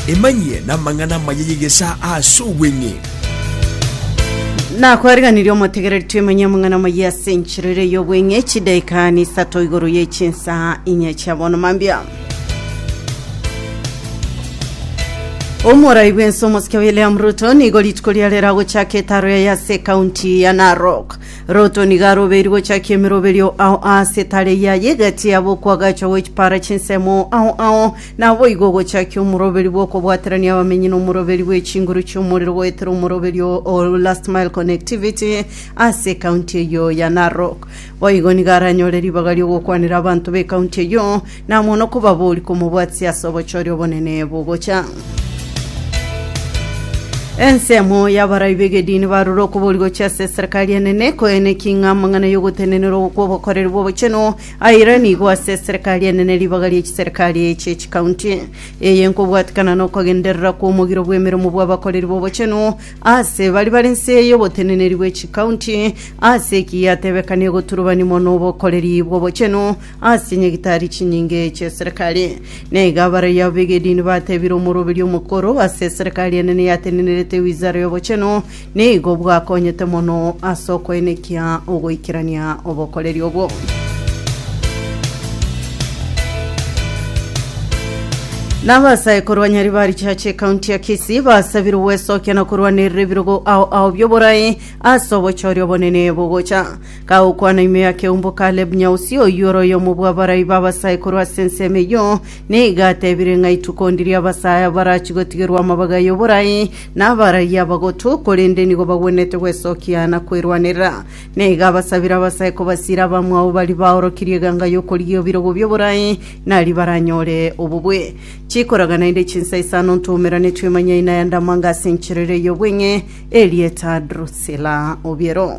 Emanyie namang'ana amaya y'egesaa ase obweng'e. Nakwariganirie omotegereri twemanye amang'ana amaya ase enchera ere y'obweng'e chidaika nisato igoro ye chinsaa inye chia bono mambia omorai bw'ense omosike William Ruto nigo rituko riare ragochaka etaro yaye ase ekaunti ya Narok Loto nigo arobeirwe gochakia emeroberio ao aase tare yaye, egati yabo okwagacha gwe chipara chinsemo ao ao, naboigo ogochakia omoroberi bw'okobwaterania abamenyi nomoroberi bwe chinguru chi'omorero goetera omoroberio o Last Mile Connectivity ase ekaunti eyio ya Narok. Boigo nigo aranyore ribaga ri'ogokwanera abanto b'ekaunti eyio, Na mono kobabori komobwatia ase obochori obonene bogocha. Ensemo y'abarai b'egedini barure okobori gochia ase eserekari enene koeneki ng'a amang'ana y'ogotenenerwa kw'obokoreri bw'obochenu aire nigo ase eserekari enene ribaga rie chiserekari echie chikaunti. Eye nkobwatekana n'okogenderera kw'omogiro bw'emeremo bw'abakoreri b'obochenu ase bari bare nse y'oboteneneri bwe chikaunti ase ekiya atebekane egoturubani mono obokoreri bw'obochenu Ase nyagitari chinyinge chi'eserekari, na iga abaraiyo ab'egedini batebire omoroberia omokoro ase eserekari enene yatenenerete ewizara y'obochenu, nigo bwakonyete mono ase okoenekia ogoikerania obokoreri obwo. Na abasaekuru ba Nyaribari Church ekaunti ya Kisii basabire ogwesokia na korwanerera ebirogo ao ao bi'oborai ase obochori obonene bogocha. Gagokwana ime y'akeumbu Kaleb Nyausi, oyio ore oyomo bw'abarai b'abasaikuru ase ensemo eyio, nigo atebire ng'a ituko ndiria abasae abarachie gotigerwa amabaga y'oborai nabarai abagotu, korende nigo bagwenerete gwesokia na kwerwanerera. Nigo abasabire abasae kobasiira abamwabo baria baorokirie eganga y'okorigia ebirogo bi'oborai, nari baranyore obobue. Chikoraga naende chinsa isano ntoumerane twemanyai na Yandamanga ase enchera eria y'obweng'e, erieta Drusila obiero.